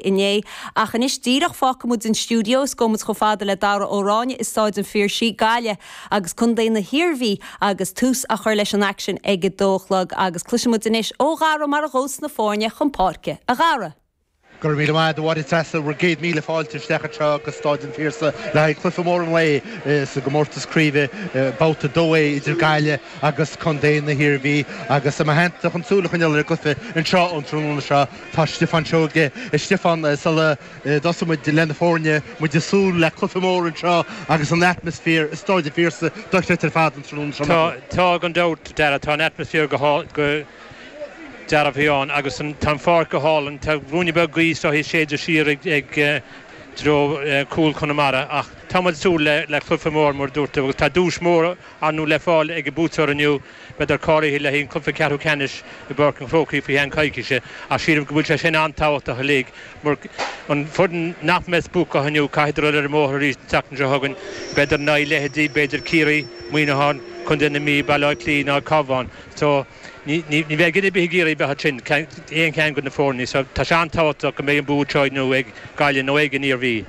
inné, ach anois díreach fágfaidh muid an stiúideo is gabhfaidh muid chomh fada le Dara Ó Ráinne i Staid an Phiarsaigh, Gaillimh, agus Contae na hIarmhí agus tús á chur leis an aicsean ag a dó a chlog agus cloisfidh muid anois ó Dhara mar a ghabhfas na foirne chun páirce. A Dhara. Go raibh míle maith agat a Mháire Treasa bhur gcéad míle fáilte isteach anseo go Staid an Phiarsaigh le haghaidh cluiche mór an lae sa gcomórtas craoibhe, babhta 2A, idir Gaillimh agus Contae na hIarmhí agus i mo theannta chun súil a choinneáil ar an gcluiche anseo an tráthnóna seo. Tá Stiofán Seoige. A Stiofán, sula dtosaíonn muid le na foirne, muid ag súil le cluiche mór anseo agus an atmaisféar i Staid an Phiarsaigh dochreidte ar fad an tráthnóna seo, nach bhfuil? Tá gan dabht, Dara, tá an atmaisféar go dearbh fhiáin agus tá an pháirc go hálainn. Tá ruainne beag gaoithe is dóigh ag séideadh siar i dtreo chúl Chonamara ach tá muid ag súil le cluiche mór, mar a dúirt tú, agus tá duais mhór, ar ndóigh le fáil ag an buaiteoir inniu. Beadar cáilithe le haghaidh an cluiche ceathrú ceannais i bPáirc an Chrócaigh faoi cheann coicíse, ach sílim go bhfuil sé sin an-tábhachtach uilig, mar an foireann nach mbeidh buacach inniu, caithfeadar dul ar an mbóthar arís an tseachtain seo chugainn. Beadar in aghaidh leithéidí, b'fhéidir, Ciarraí, Muineachán, Contae na Mí, Baile Átha Cliath nó an Cabhán. So, ní ní bheidh duine ar bith ag iarraidh a bheith ansin, aon cheann de na foirne. So, tá sé an-tábhachtach go mbeidh an bua seo inniu ag Gaillimh nó ag an Iarmhí.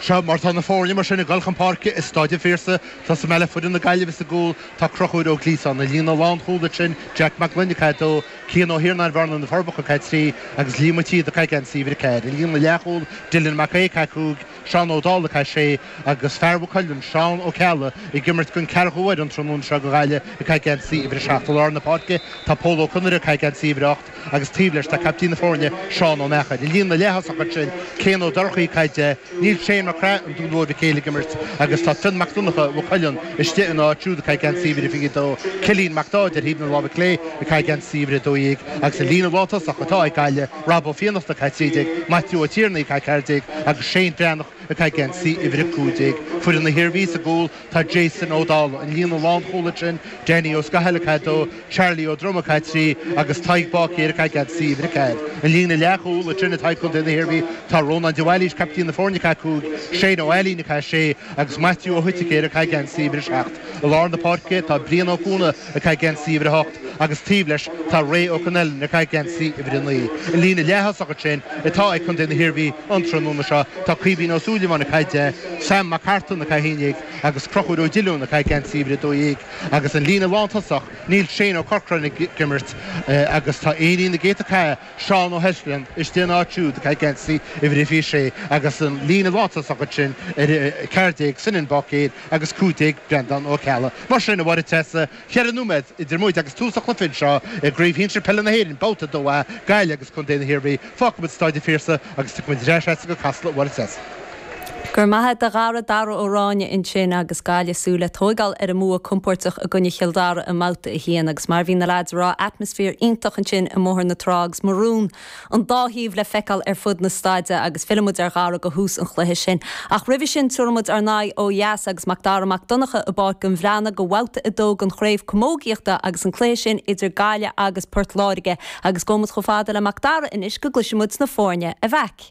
Seo mar tá na foirne mar sin ag dul chun páirce i Staid an Phiarsaigh. Tosóidh mé le foireann na Gaillimhe sa gcúl. Tá Conchúr Ó Gliasáin, an líne lánchúl ansin Jack Mac Gloinn, ag caitheamh 2, Cian Ó hIarnáin, Bhearna-Na Forbacha, ag caitheamh 3, agus Liam Ó Síoda, ag caitheamh geansaí uimhir a 4, an líne leathchúl Dylan Mac Aoidh, ag caitheamh 5, Seán Ó Dálaigh, ag caitheamh 6, agus fear Mhaigh Cuilinn, Seán Ó Ceallaigh, ag imirt den ceathrú huair an tráthnóna seo do Ghaillimh, ag caitheamh geansaí uimhir a 7, I lár na páirce tá Pól Ó Conaire, ag caitheamh geansaí uimhir a 8, agus taobh leis tá caiptín na foirne Seán Ó Meachair. An líne leath-thosach ansin, Céin Ó Dorchaí, ag caitheamh 10, níl Shane Mac Craith an Dúin Mhóir Mhic Éil ag imirt agus tá Fionn Mac Donnacha, Mhaigh Cuilinn, istigh ina áit siúd ag caitheamh geansaí uimhir a 22, Cillian Mac Dáid ar thaobh na láimhe clé ag caitheamh geansaí uimhir a 12 agus an líne lántosach atá ag Gaillimh, Rob Ó Fiannachta, ag caitheamh 13, Maitiú Ó Tiarnaigh, ag caitheamh 14, agus Shane Breathnach ag caitheamh geansaí uimhir a 15. Foireann na hIarmhí sa gcúl. Tá Jason Ó Dálaigh, an líne lánchúl ansin, Danny Ó Scathail, ag caitheamh 2, Charlie Ó Droma, ag caitheamh 3, agus Tadhg Báicéir, ag caitheamh geansaí uimhir a 4. An líne leathchúl ansin atá ag Contae na hIarmhí, tá Rónán de Bhailís, captaen na foirne, ag caitheamh 5, Shane Ó hAilín, ag caitheamh 6, agus Maitiú Ó hOiticéir, ag caitheamh geansaí uimhir a 7. I lár na páirce tá Brian Ó Cuana, ag caitheamh geansaí uimhir a 8, agus taobh leis tá Ray Ó Connellan, ag caitheamh geansaí uimhir a 9. An líne leath-thosach ansin atá ag Contae na hIarmhí an tráthnóna seo, tá Caoimhín Ó Súilleabháin, ag caitheamh 10, Sam Mac Artáin, ag caitheamh 11, agus Conchúr Ó Diolúin, ag caitheamh geansaí uimhir a 12, agus an líne lántosach, Níl Shane Ó Corcráin ag imirt agus tá laoch na gcéadta cath Seán Ó hEislin istigh ina áit siúd ag caitheamh geansaí uimhir a 26 agus an líne lántosach ansin ar 14 Senan Báicéir agus 15 Breandán Ó Ceallaigh. Mar sin a Mháire Treasa, Ceithre nóiméad idir muid agus tús an chluiche anseo i gCraobh Shinsir Peile na hÉireann, Babhta 2A, Gaillimh agus Contae na hIarmhí. Fágfaidh muid Staid an Phiarsaigh agus tiocfaimid ar ais as sin go Casla a Mháire Treasa. Go raibh maith a'd a Dhara, Dara Ó Ráinne ansin agus Gaillimh ag súil le tóigeáil ar an mbua compóirteach i gcoinne Chill Dara i mBabhta 1 agus mar a bhí na leaids a' rá atmaisféar iontach ansin i mBóthar na Trá agus marún an dá thaobh le feiceáil ar fud na staide agus fillfidh muid ar Dhara do thús an chluiche sin. Ach roimhe sin, tabharfaidh muid ár n-aghaidh ó dheas agus Macdara Mac Donncha i bPáirc an Bhreathnaigh do Bhabhta 2 don Chraobh Camógaíochta agus an cluiche sin idir Gaillimh agus Port Láirge agus gabhfaidh muid chomh fada le Macdara anois go gcloisfidh muid na foirne a bheadh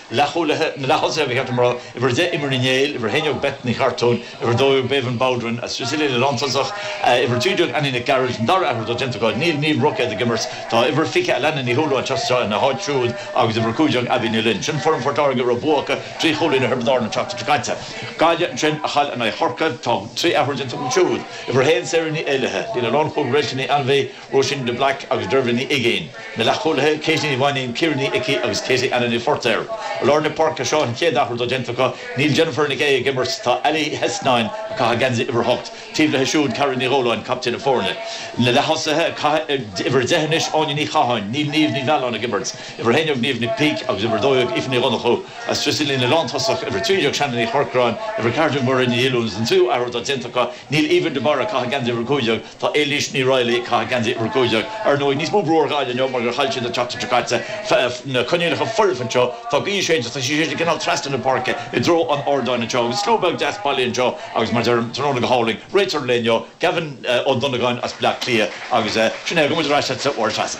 Leathchúlaithe, na leath-thosaithe, Uimhir 10 Eimear Ní Néill, Uimhir 11 Beth Ní Chartúin, Uimhir 12 Bébhinn Bowdren, agus sa líne lántosach, Uimhir 13 Annie Nic Gearailt, an dara athrú atá déanta acu, níl Niamh Roicéad ag imirt, tá Uimhir 20 Alanna Ní Shúilleabháin anseo ina háit siúd agus Uimhir 15 Abbie Ní Fhloinn. Sin foireann Phort Láirge a raibh bua acu trí chúilín ar Thiobraid Árann an tseachtain seo caite. Gaillimh ansin a chaill in aghaidh Chorcaí. Tá trí athrú déanta acu siúd, Uimhir 1 Sarah Ní Éallaithe, líne lánchúil Rachael Ní Ainbhith, Róisín de Blaic agus Dervla Ní Uiginn, na leathchúlaithe, Katie Ní Mhainnín, Ciara Ní Icí agus Katie Anna Ní Phortair. I lár na páirce seo, an chéad athrú atá déanta acu, níl Jennifer Nic Aodha ag imirt, tá Ally Hesnan, ag caitheamh geansaí uimhir a hocht, taobh leis siúd, Carrie Ní Dhóláin, captaen na foirne. Na leath-thosaithe ag caitheamh uimhir a deich anois, Áine Ní Chatháin, níl Niamh Ní Mhealláin ag imirt, uimhir a haon déag, Niamh Nic Píc, agus uimhir a dó dhéag, Aoife Ní Dhonnchú, agus sa líne lántosach, uimhir a trí déag, Shannon Ní Chorcráin, uimhir a ceathair déag, Mairéad Ní Dhiolúin, agus an tríú athrú atá déanta acu, níl Aoibhinn de Barra, ag caitheamh geansaí uimhir a cúig déag, Tá Éilís Ní Raghallaigh ag caitheamh geansaí uimhir a cúig déag. Ar ndóigh, níos mó brú ar Ghaillimh inniu mar gur chaill siad an tseachtain seo caite is na coinníollacha foirfe anseo. Tá gaoth séidte agus tá sí ag séideadh cineál trasna na páirce i dtreo an ardáin anseo agus slua beag deas bailithe anseo agus mar deirim, tráthnóna go hálainn. Réiteoir linn inniu, Gavin Ó Donnagáin as Bleá Cliath agus sin é, gabhfaidh muid ar ais agatsa a Mháire Treasa.